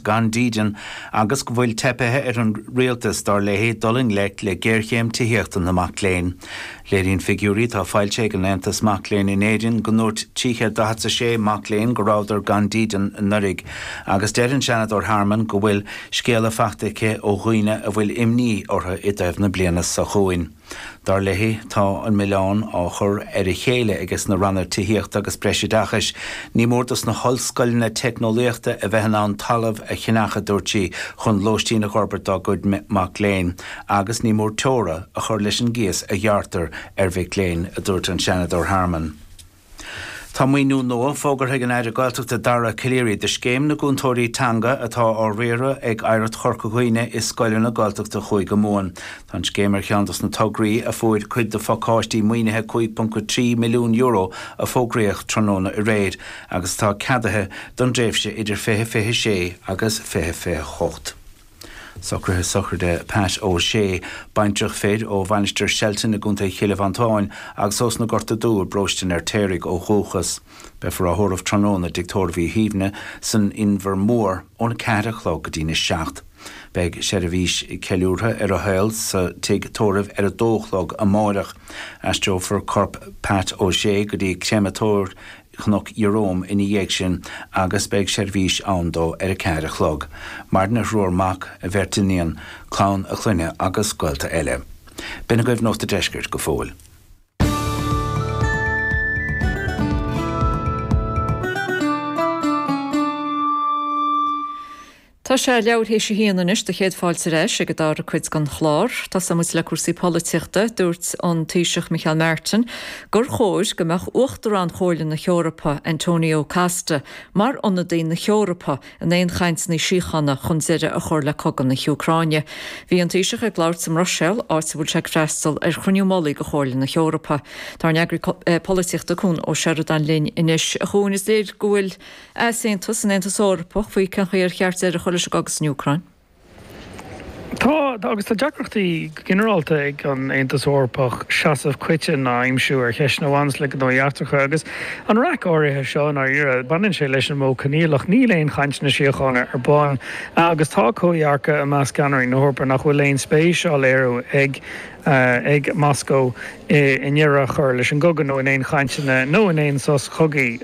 gan dídean agus go bhfuil teipthe ar an rialtas, dar léi, dul i ngleic le géarchéim tithíochta na mac léinn. Léiríonn figiúirí atá foilsithe ag Aontas na Mac Léinn in Éirinn go ndúirt 346 mac léinn go rabhadar gan dídean anuraidh agus deir an Seanadóir Harmon go bhfuil scéala faighte aici ó dhaoine a bhfuil imní orthu i dtaobh na bliana seo chugainn. Dar léi, tá an milleán á chur ar a chéile ag sna Ranna Tithíochta agus Breis Oideachais. Ní mór do sna hollscoileanna teicneolaíochta a bheith in ann talamh a cheannach, a dúirt sí, chun lóistín a fhorbairt dá gcuid mac léinn agus ní mór teora a chur leis an gcíos a ghearrtar ar mhic léinn, a dúirt an Seanadóir Harmon. Tá maoiniú nua fógartha ag an Aire Gaeltachta Dara Calleary do Scéim na gCúntóirí Teanga atá á riaradh ag Oidhreacht Chorca Dhuibhne i scoileanna Gaeltachta Chúige Mumhan. Tá an scéim ar cheann dos na tograí a fuair cuid de phacáiste maoinithe €5.3 milliún a fógraíodh tráthnóna aréir agus atá ceadaithe don dtréimhse idir 2026 agus 2028. Socruithe sochraide Pat O Shea, baintreach fir ó Mhainistir Shelton i gContae Chill Mhantáin agus ós na Gorta Dubha i bParóiste an Fheirtéaraigh ó dhúchas. Beifear á thórramh tráthnóna i dtigh tórraimh Uí Shuibhne san Inbhear Mór ón 4 a chlog go dtí'n 7. Beidh seirbhís ceiliúrtha ar a shaol sa tigh tórraimh ar a dó a chlog amáireach. Aistreofar corp Pat O Shea go dtí Créamatóir Chnoc Ieróm ina dhiaidh sin agus beidh seirbhís ann dó ar a ceathair a chlog, maireann a thriúr mac, a bheirt iníon, clann a chlainne agus gaolta eile. B'in agaibh Nuacht a' Deiscirt go fóill. Tá sé leathuair théis a haon anois agus céad fáilte ar ais ag an dara cuid den chlár. Tosaímid le cúrsaí polaitíochta. Dúirt an Taoiseach Micheál Martin gur chóir go mbeadh Uachtarán Chomhairle na hEorpa, Antonio Costa, mar ionadaí na hEorpa in aon chainteanna síochána chun deireadh a chur le cogadh na hÚcráine. Bhí an Taoiseach ag labhairt sa mBruiséil, áit a bhfuil sé ag freastal ar chruinniú mullaigh de Chomhairle na hEorpa. Tá ár n-eagraí polaitíochta Cuan Ó Seireadáin linn anois. A Chuain, is léir go bhfuil easaontas san Aontas Eorpach faoi cén chaoi ar cheart deireadh a chur leis an gcogadh san Úcráin. Tá, agus tá deacrachtaí go ginearálta ag an Aontas Eorpach seasamh coiteann a aimsiú ar cheisteanna a bhaineas le gnóthaí eachtracha. Agus an raic áirithe seo i ndáiríre, baineann sé leis an modh coinníollach, níl aon chainteanna síochána ar bun. Agus tá comhdhearcadh i measc cheannairí na hEorpa nach bhfuil aon spéis á léiriú ag Moscó i ndeireadh a chur leis an gcogadh nó in aon chainteanna nó in aon sos cogaidh.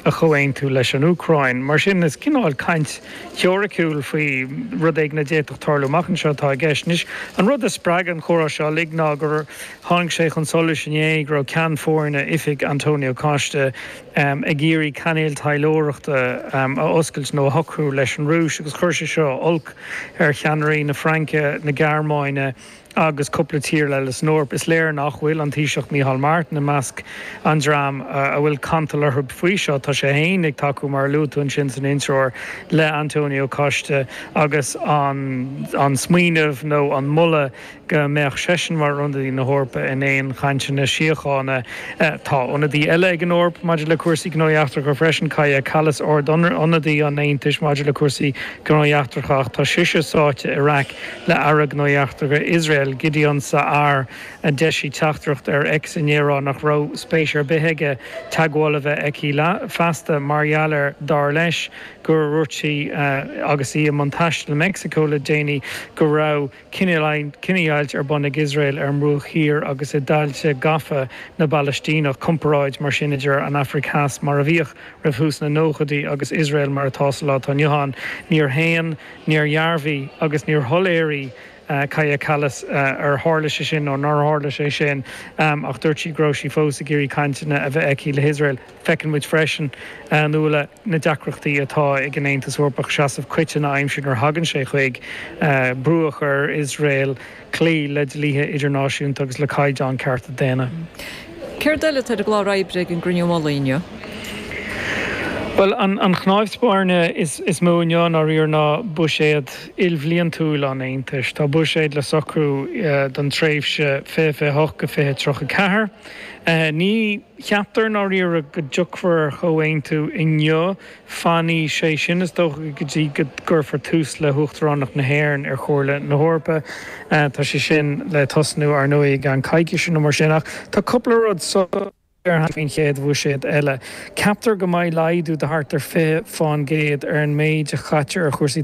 a chomhaontú leis an Úcráin. Mar sin, is cineál caint theoiriciúil faoi rud éigin a d'fhéadfadh tarlú amach anseo atá i gceist. Anois, an rud a spreag an comhrá seo uilig ná gur tháinig sé chun solais inné go raibh Ceann Foirne Oifig Antonio Costa ag iarraidh cainéal taidhleoireachta a oscailt nó a shocrú leis an Rúis agus chuir sé seo olc ar cheannairí na Fraince, na Gearmáine. agus cúpla tír eile san Eoraip, is léir nach bhfuil an Taoiseach Micheál Martin i measc an dream a bhfuil cantal orthu faoi seo. Tá sé féin ag tacú, mar a luaigh tú ansin san intreoir, le Antonio Costa agus an smaoineamh nó an moladh go mbeadh seisean mar ionadaí na hEorpa in aon chainteanna síochána. Tá ionadaí eile ag an Eoraip maidir le cúrsaí gnóthaí eachtracha freisin, Kaja Kallas, Ard-Ionadaí an Aontais maidir le cúrsaí Gnóthaí Eachtracha, ach tá sise sáite i raic. le Aire Gnóthaí Eachtracha Iosrael, Gideon Sa'ar, a d'eisigh teachtaireacht ar X inné ag rá nach raibh spéis ar bith aige teagmháil a bheith aige léi feasta mar gheall ar, dar leis, gur dhúirt sí, agus í i mbun taistil i Meicsiceo le déanaí, go raibh cinedhíoghailt ar bun ag Iosrael ar an mBruach Thiar agus i dtailte gafa na bPalaistíneach, comparáid mar sin idir an Afraic Theas mar a bhíodh roimh thús na nóchaidí agus Iosrael mar atá sa lá atá inniu ann. Níor shéan. Níor dhearbhaigh agus níor shoiléirigh Kaja Kallas ar tharla sé sin nó nár tharla sé sin ach dúirt sí go raibh sí fós ag iarraidh cainteanna a bheith aici le hIosrael. Feiceann muid freisin, a Nuala, na deacrachtaí atá ag an Aontas Eorpach seasamh coiteann a aimsiú nuair a thagann sé chuig brú a chur ar Iosrael. cloí le dlíthe idirnáisiúnta agus le caighdeáin cearta daonna. Céard eile atá ar an gclár oibre ag an gCruinniú Mullaigh inniu? Bhuel, an chnáimh spairne is mó inniu dáiríre ná buiséad ilbhliantúil an Aontais. Tá buiséad le socrú don tréimhse 2028-2034. Ní cheaptar ná riamh go dtiocfar ar chomhaontú inniu Fanfaidh sé sin, is dócha, go dtí go gcuirfear tús le hUachtaránacht na hÉireann ar Chomhairle na hEorpa. Tá sé sin le tosnú, ar ndóigh, i gceann coicíse nó mar sin. Ach tá cúpla rud soiléir cheana féin faoin gcéad bhuiséad eile. Ceaptar go mbeidh laghdú de thart ar 20% ar an méid a chaitear ar chúrsaí